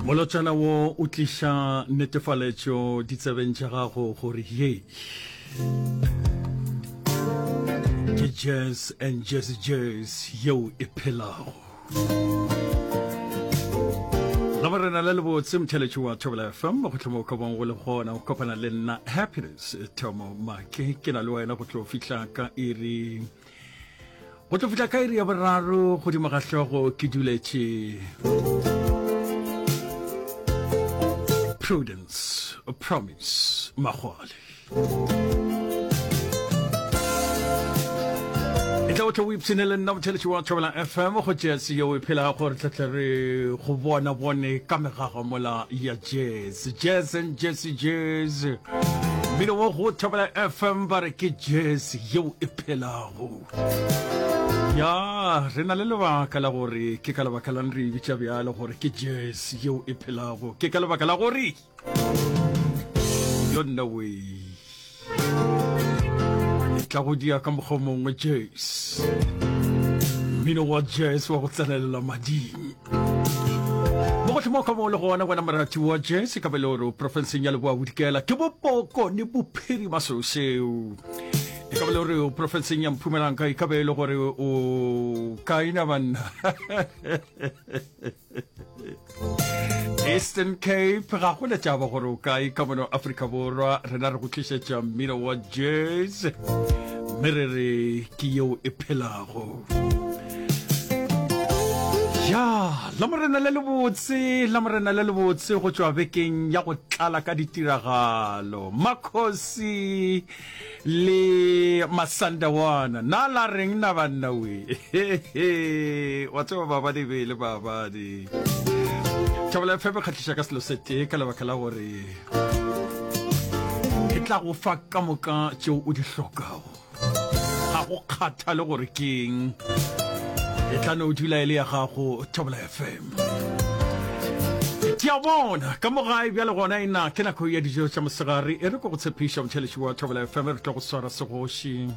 molotšana wo o tliša netefaletšo ditsebeng tša gago gore ye ke jazz and jazz jazz yeo e phelago la morena le lebotse motheletši wa thobela fm go tlhoma o ka bong go le gona o kopana le nna happiness thomo make ke na le wena go tlo fihla ka iri go tlo fihla ka iri ya boraro godimo ga hlogo ke duletše prudence promise magole e tla o tle o ipshine le nna motheletši wa thobela fm go jese yeo e phelago gore tletle re go bona bone ka megago mola ya jese Sejese ntše sejese mmino wo go thobela fm ba re ke jese yeo e phelago ya re na le lebaka la gore ke ka lebaka lang re e bitša bjalo gore ke jese yeo e phelago ke ka lebaka la gore yo nna wee e tla go dia ka mokgwa mongwe jas mmino wa jas wa go tsenelela mading mo go tlhomo ka mo le gona wena morati wa jas ka beloro profenseng ya leboa bodikela ke bopoko ne bophirima seo seo e ka bele gore o profenseng ya mphumelang ka e ka be e le gore o kaina banna eastern cape ga go letšaba gore o kae ka mona afrika borwa rena re go tlišetša mmino wa jazz mme re re ke yeo e phelago ya la morena le lebotse la morena le lebotse go tšwa bekeng ya go tlala ka ditiragalo makgosi le masanda wana na la reng na banna we wa tseba babadi be le babadi thabela fm e kgatlhiša ka selo sete ka lebaka la gore e tla go fa ka moka tšeo o di hlokago ga go kgathale gore keng e tla no dula e le ya gago thabela fm ke a bona ka mogae bjale gona e na ke nako ya dijo tša mosegare e re ko go tshepiša motšheletši wa thobela fm re tlo go swara segoši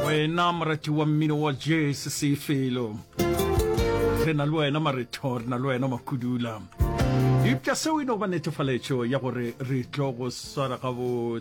wena morati wa mmino wa jese sefelo re na le wena maretho re na le wena makudula eupša seo e no ba netefaletšo ya gore re tlo go swara gabotse